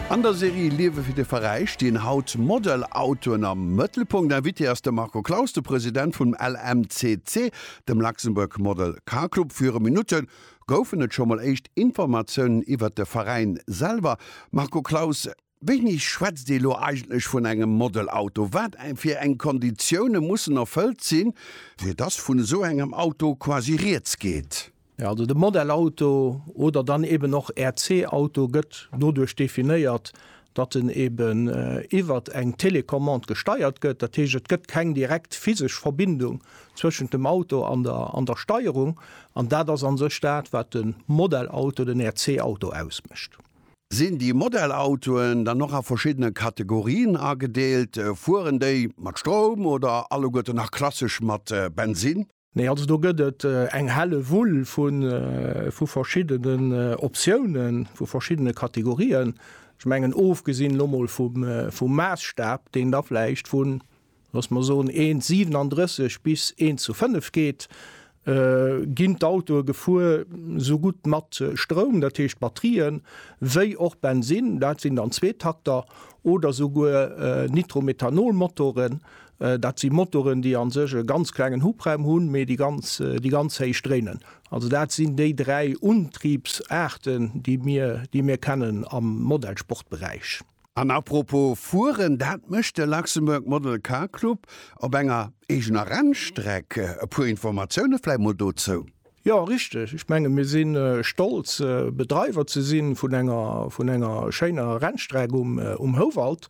An der Serie Liewe fir de Veräi stinn haut Model-Autoen am Mëttelpunkt. Invité ass de Marco Claus, de President vum LMCC, dem Luxembourg Model Car Club. Viru Minutte goufen et scho mol éischt Informatiounen iwwert de Veräin selwer. Marco Claus, Wéini schwätzt ee lo eigentlech vun engem Modelauto? Wat fir eng Konditioune mussen erfëllt sinn, fir dass vun esou engem Auto quasi rieds geet? Jo, also de Modelauto oder dann eben och RC-Auto gëtt doduerch definéiert, datt en eben iwwert eng Télécommande gesteiert gëtt. Dat heescht, et gëtt keng direkt physesch Verbindung zwëschent dem Auto an der Steierung. An dat ass a sech dat, wat de Modelauto, den RC-Auto ausmécht. Sinn déi Modellautoen dann och a verschiddene Kategorien agedeelt? Fueren déi mat Stroum oder alleguerten nach klassesch mat Bensinn? Nee, also do gëtt et eng Hellewull vu verschiddenen Optiounen, vu verschiddene Kategorien. Ech mengen, ofgesinn elo mol vum Maasstap, deen da vläicht vu lass mer soen, Eent 37 bis eent zu 5 geet, ginn d'Autoe gefuer, esou gutt mat Stroum, dat heescht Batterien, wéi och Bensinn, dat sinn dann Zweetakter oder souguer Nitromethanol-Motoren. Dat si Motoren, déi a sech e ganz klengen Hubraum hunn, mee déi ganz héich dréinen. Also dat sinn déi dräi Untriebsaarten, déi mir kennen am Modellsportberäich. An à propos fueren, dat mécht de Luxembourg Model Car Club op enger eegener Rennstreck. E puer Informatioune vläit mol dozou. Jo, richteg. Ech menge mir si stolz Bedreiwer ze si vun enger vun enger schéiner Rennstreck um Houwald.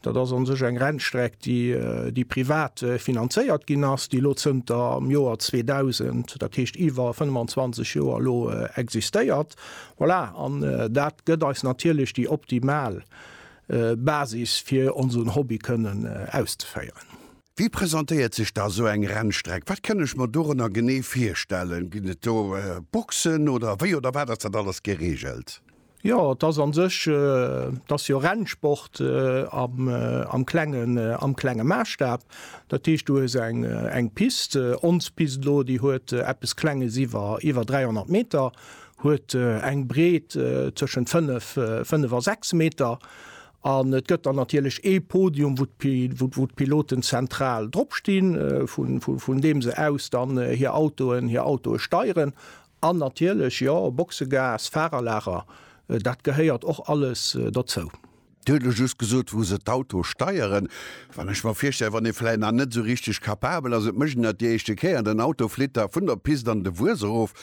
Dat ass an sech eng Rennstreck déi déi privat finanzéiert ginn ass, déi elo zënter am Joer 2000, dat heescht iwwer 25 Joer elo existéiert. Voilà, an dat gëtt eis natierlech déi optimal Basis fir onsen Hobby kënnen auszeféieren. Wéi presentéiert sech da sou eng Rennstreck? Wat kënn ech mer dorënner genee virstellen? Ginn et do Boxen oder wéi oder wat ass dat alles gereegelt? Jo, et ass a sech, et ass jo Rennsport am klengen, am klenge Maasstaaw. Dat heescht du hues eng Pist, ons Pist elo, déi huet eppes Klenges iwwer 300 Meter. Huet eng Breet tëschent 5 a 6 Meter. An et gëtt dann natierlech ee Podium, wou d'Piloten zentral drop stinn, vun deem se aus dann hir Autoen hir Autoe steieren. An natierlech, jo, Boxegas, Fahrerlager, dat gehéiert och alles dozou. Dir hutt elo just gesot, wou se d'Autoe steieren. Wann ech mer virstellen, wann ee vläicht nach net esou richteg capabel ass, et mécht een dat déi éischte Kéier, den Auto flitt da vun der Pist an de Wues erof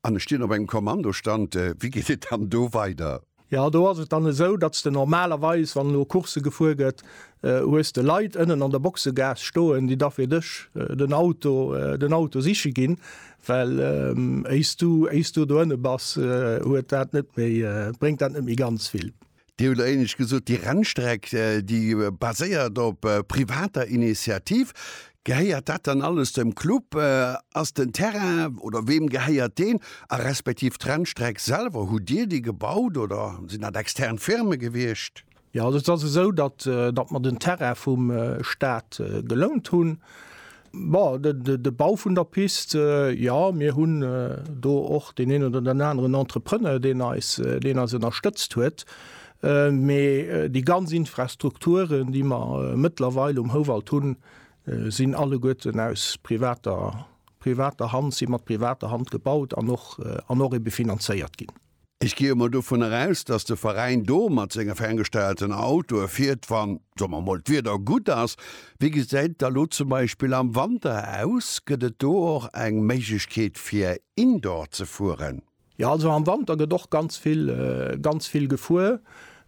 an ech stinn op engem Kommandostand, wéi geet et dann do weider? Jo, do ass et dann esou, datt s de normalerweis, wann elo Coursse gefuer gëtt, hues de Leit ënnen an der Boxegaass stoen, déi da fir dech den Auto, den Auto siche ginn, well éis du, éis du do ënne bass, huet dat net méi, bréngt dat net méi ganz vill. Dir hutt éinescht gesot, déi Rennstreck, déi baséiert op privater Initiativ. Gehéiert dat dann alles dem Club? Ass den Terrain, oder weem gehéiert deen? A respektiv d'Rennstreck selwer, hutt Dir déi gebaut oder sinn dat extern Firme gewiescht? Jo, also et ass esou, datt mer den Terrain vum Staat gelount hunn. Bon, de, de, de Bau vun der Pist, äh, jo, mir hunn äh, do och deen een oder den aneren Entrepreneur, deen eis, äh, deen eis ënnerstëtzt huet. Äh, mee äh, déi ganz Infrastrukturen, déi mer äh, mëttlerweil um Houwald hunn, äh, sinn alleguerten aus privater, privater Hand, si mat privater Hand gebaut an och, äh, an och ebe finanzéiert ginn. Ech gehe mol dovunner aus, dass de Veräin do mat senge ferngesteierten Autoe fiert, wann, soe mer mol, d'Wieder gutt ass. Wéi gesäit et da lo zum Beispill am Wanter aus? Gëtt et do och eng Méiglechkeet, fir indoor ze fueren? Jo, also am Wanter gëtt och ganz vill, ganz vill gefuer.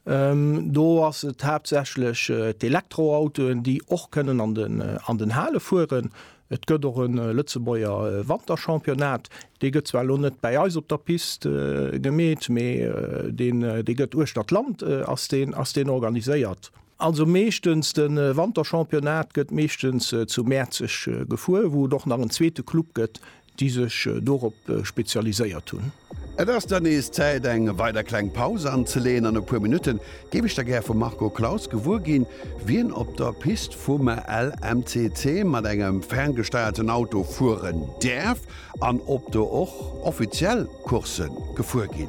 Do ass et haaptsächlech d'Elektroautoen, déi och kënnen an den Hale fueren. Et gëtt och e Lëtzebuerger Wanterchampionnat. Dee gëtt zwar elo net bäi eis op der Pist gemeet, mee dee gëtt uechter d'Land ass deen ass deen organiséiert. Also meeschtens de Wanterchampionnat gëtt meeschtens zu Mäerzeg gefuer, wou et och nach en zweete Club gëtt, déi sech dorop spezialiséiert hunn. Et ass dann nees Zäit eng weider kleng Paus anzeleeën. An e puer Minutte géif ech da gär vum Marco Claus gewuer ginn, wien op der Pist vum LMCC mat engem ferngesteierten Auto fueren däerf an ob do och offiziell Coursse gefuer ginn.